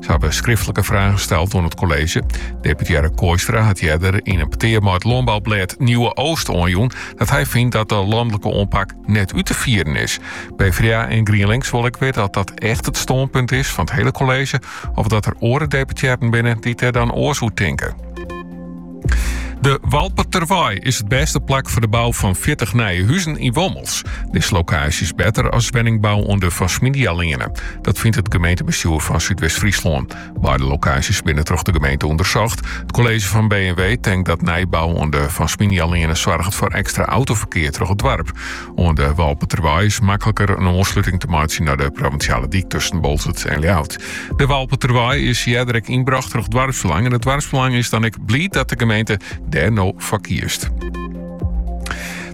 Sy hawwe skriftlike fragen steld oan it kolleezje. Deputearre Kooistra hat earder yn in petear mei it lânboublêd Nieuwe Oogst oanjûn dat hy fynt dat de lanlike oanpak net út te fieren is. PvdA en GrienLinks wol ek witte oft dat echt it stânpunt is fan it hiele kolleezje of dat der oare deputearren binne dy't dêr dan oars oer tinke. De Walperterwei is it bêste plak foar de bou fan fjirtich nije huzen yn Wommels. Dizze lokaasje is better as wenningbou oan de Van Sminialeane. Dat fynt it gemeentebestjoer fan Súdwest-Fryslân. Beide lokaasjes binne troch de gemeente ûndersocht. It kolleezje fan B en W tinkt dat nijbou oan de Van Sminialeane soarget foar ekstra autoferkear troch it doarp. oan de Walperterwei is makliker in oansluting te meitsjen nei de provinsjale dyk tusken Bolsert en Ljouwert. De Walperterwei is earder ek ynbrocht troch doarpsbelang en it doarpsbelang is dan ek bliid dat de gemeente dêr no foar kiest.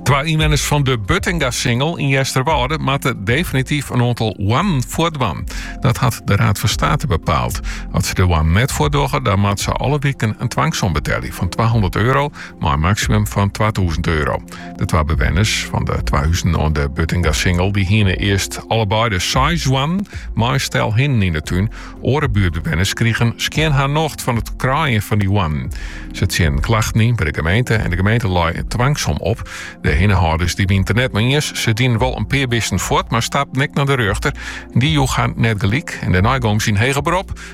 Twa ynwenners fan de Buttingasingel yn Easterwâlde moatte definityf in oantal hoannen fuortdwaan. Dat hat de Raad van State bepaald. As se de hoannen net fuortdogge, dan moatte se alle wiken een twangsom betelje van 200 euro, mei in maksimum fan 2000 euro. De twa bewenners fan de twa huzen oan de Buttingasingel dy hiene earst allebeide seis hoannen mei in stel hinnen yn de tún. Oare buertbewenners krigen skjin har nocht fan it kraaien fan dy hoannen. Se tsjinne klachten yn by de gemeente en de gemeente lei in twangsom op. De hinnehâlders dy wienen it der net mei iens. Se dienen wol in pear bisten fuort, mar stapten ek nei de rjochter. En dy joech har net gelyk en dêrnei gongen se yn heger berop.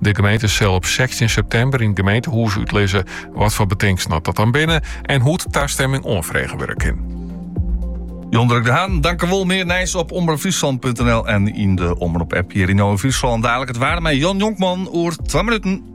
De gemeente sil op 16 september yn it gemeentehûs útlizze wat foar betingsten dat dan binne en hoe't tastemming oanfrege wurde kin. Jan Durk de Haan, tankewol. Mear nijs op omropfryslan.nl en yn de Omrop-app hjir yn Omrop Fryslân. Dalik it waar mei Jan Jonkman oer 2 minuten.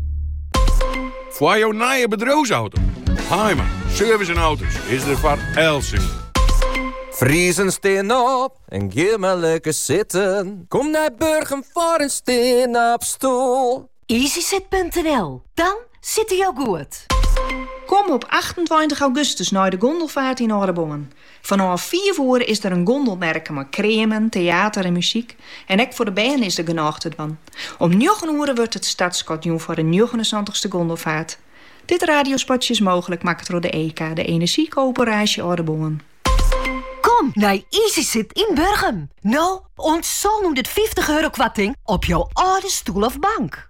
Foar jo nije bedriuwsauto, Haaima Service en Auto's is der foar eltsenien. Friezen, stean op en gean mar lekker sitten. Kom nei Burgum foar in stean-op-stoel. Easysit.nl, dan sitte jo goed. Kom op 28 augustus nei de gondelfaart yn Aldeboarn. Fanôf fiif oere is der in gondelmerke mei kreamen, teater en muzyk. En ek foar de bern is der genôch te dwaan. Om njoggen oere wurdt it startskot jûn foar de njoggenensantichste gondelfaart. Dit radiospotje is mooglik makke troch de EKA, de Enerzjykoöperaasje Aldeboarn. Kom nei Easysit yn Burgum! No oant sânhûndertfyftich euro koarting op jo âlde stoel of bank.